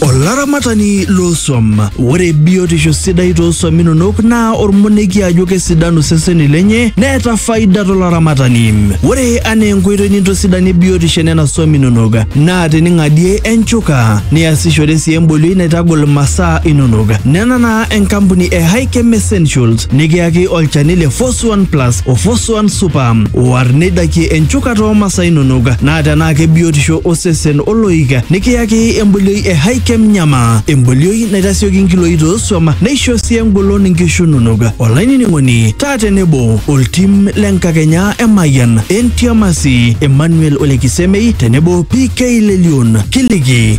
Olaramatani loosuam. Ore biotisho sidai toosuam inonok naa ormonekie ajo kesidanu seseni lenye neeta faida tolaramatani. Ore anaa enkoitoi nintosidanie biotisho enena suam inonok naa tening'adie enchuka niasishore sii embolioi naitagol masaa inonok. Nena naa enkampuni e Hikem Essentials nikiyaki olchani le Fos Fosuan Plus o Fosuan Super. War neidakie enchukata oo masaa inonok naa tenaa kebiotisho osesen oloik nikiyaki embolioi e Hikem Nyama. Embolioi naitasioki nkiloi toosuam neisho sii engolon nkishu inonok. Olainining'oni taa tenebo oltim le nkakenya e Mayian, Entiamasi, Emmanuel Olekisemei tenebo PK Lelion. Kiliki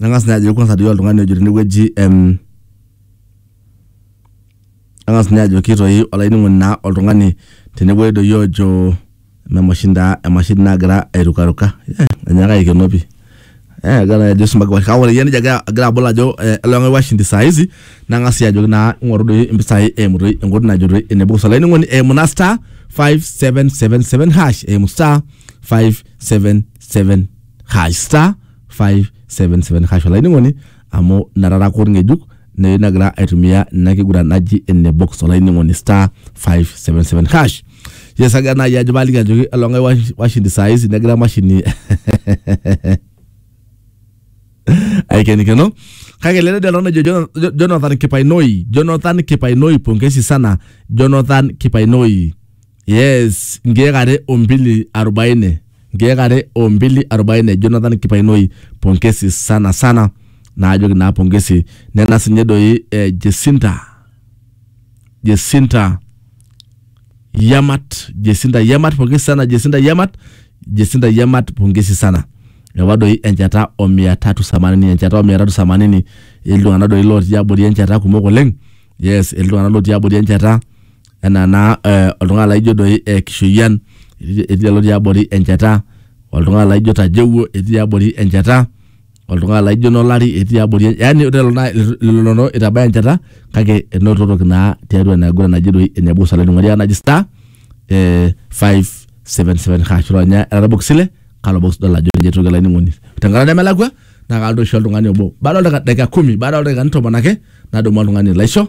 Nang'as ninye ajoki kwanza doi oltung'ani ojo tenewueji em, nang'as ninye ajoki toi olainining'oni naa oltung'ani tenewueji doi ojo eme emashini taa emashini nagira airukaruka eh, enyaaka aikenoo pii eh, agira naa ajo isumbaki kewon kake ore iyie nijo agira agira abol ajo eh, ele tung'ani washindi saa hizi nang'as sii ajoki naa ing'oru doi impisai eimu toi enkoitoi najo toi ene pukus olainining'oni eimu naa star 5777 hash eimu star 577 hash star 577 hash olainining'oni amu natara kod ng'ejuk neyu nagira aitumia ina kiguran naji ene box olainining'oni star 577 hash yes agira naaji ajo paaliki ajoki elong'ai wash- washindi saa hizi negira emashini aikenikeno kake lele dela ojo Jon- Jo- jonathan kipainoi jonathan kipainoi pongesi sana jonathan kipainoi yes nkeek are o mbili arobaini nkeek are o mbili arobaini jonathan kipainoi pongesi sana sana naajoki naa pongesi nena sinye doi eh, jesinta jesinta yamat jesinta yamat pongesi sana jesinta yamat jesinta yamat pongesi sana ewa doi enchata o mia tatu themanini enchata o mia tatu themanini iltung'anak doi lotii abori enchata kumok oleng yes iltung'anak lotii abori enchata enaa naa eh, oltung'ani laijo doi eh, Kishoyian etii etii lelo tiabori enchata, oltung'ani laijo Tajewuo etii tiabori enchata, oltung'ani laijo Nolari etii tiabori en- yaani ore lelo naa lelo noo itabaya enchata kake enototoki naa tiatua ina kiguran naji doi ene Musa Lainining'oni lai naji star eh, 577 hash ronya era orbox ile kalo box idol ajo ninye etoki olainining'oni tenkata nemelakua naa kalotu aisho oltung'ani obo baada oldaika dakika kumi baada oldaikani tomon ake nadumu oltung'ani laisho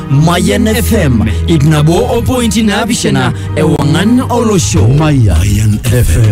Mayan FM ip nabo opointi naapishana ewang'an olosho. Mayan FM.